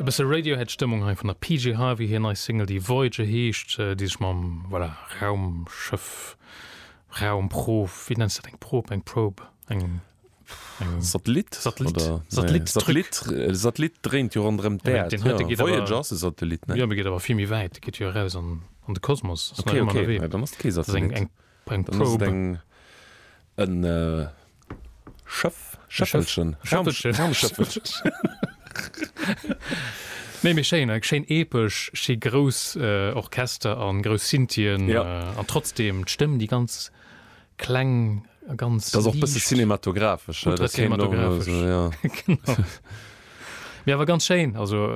E bësse Radiohead Stëmmung hei vun der PJ Harvey, hir nei Single déi Voyager heescht, déi sech mam, voilà, Raumschëff, Raumprof, wéi nenns de dat, eng Prob, eng Probe, eng, eng, Satellit, Satellit, oder, nee, Satellit, Truc. Satellit, e Satellit dréint jo ronderëm Ja, mä d'Äerd, den heite jo, geet awer, Voyager ass e Satellit, nee? jo, mee geet awer vill méi wäit, geet jo eraus an, an de Kosmos, ass nach Okay, ëmmer okay, ënnerwee, ja, dann ass et kee dat ass eng, Satellit. eng Brengt d'Probe. En Schëff, Schëffelchen, Méi schéin, schéin epesch, schéi grouss Orchester an grouss Synthien an trotzdem d'Stëmm déi ganz kleng a ganz. Ass och bësse cinematographesch. Mee awer ganz schéin, also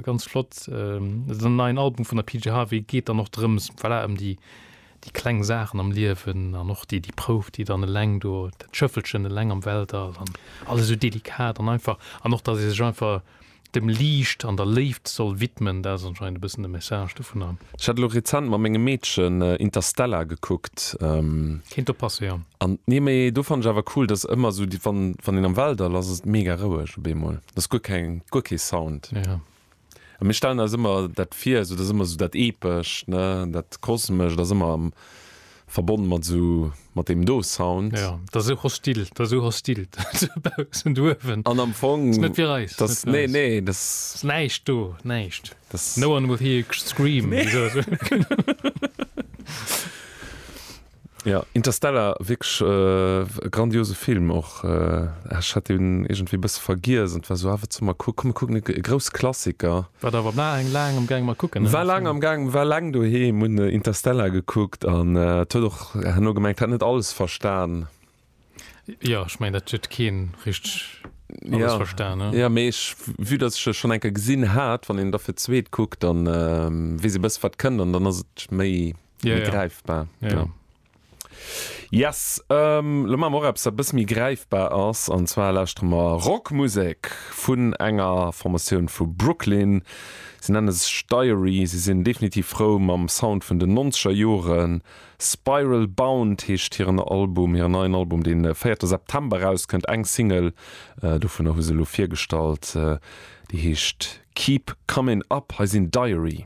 ganz flott. Den neien Album vun der PJ Harvey geet dann och drëms, voilà, ëm déi. Déi kleng Saachen am Liewen an och déi déi Prouf, déi dann eleng do, dat Schëffelchen eleng am Weltall an alles esou delikat an einfach an och, datt ee sech einfach dem Liicht an der Léift soll widmen, dat ass anscheinend e bëssen de Message dovunner. Ech hat elo rezent mat mengem Meedchen Interstellar gekuckt. Kéint do passe, jo. An, nee, mee do fannt ech awer cool, datt ëmmer esou déi, wann, wann een am Weltall ass, ass et mega roueg op eemol. Ass guer keng, guer kee Sound. Jo. A mir stellen eis ëmmer dat vir, esou dat ass ëmmer esou dat Epescht, ne, dat Kosmescht ass ëmmer verbonne mat esou mat deem do Sound. Jo, dat ass esou hostil, dat ass esou hostil dobaussen, douewen. An am Fong. Dat ass net fir eis. Dat, nee, nee, dat. Dat ass näischt do, näischt. No one will hear you scream. Nee. Ja, Interstellar, wierklech e grandiose Film och. Ech hat deen iergendwéi e bësse vergiess an et war esou, ah, wat solle mer kucken? Komm, mir kucken e grouss Klassiker. War der awer laang, laang am Gaang mat kucken, ne? War laang am Gaang, war laang doheem, hunn Interstellar gekuckt an et huet och herno gemengt, hat net alles verstan. Jo, ech mengen dat huet keen richteg alles verstan ne. Jo mee ech vue dass ech e schonn eng Kéier gesinn hat, wann een da fir d'zweet kuckt dann weess ee bësse wat kënnt an dann ass et méi gräifbar. Yes, lo maache mer och eppes wat e bësse méi gräifbar ass an zwar lauschtere mer Rockmusek vun enger Formatioun vu Brooklyn. Si nenne sech Diary, si sinn definitiv frou mam Sound vun den nonzeger Joren Spiral Bound heescht hiren Album, hiren neien Album, dee véierte September erauskënnt. Eng Single dovunner hu se elo virgestallt, déi heescht Keep Comin' Up. Hei sinn Diary.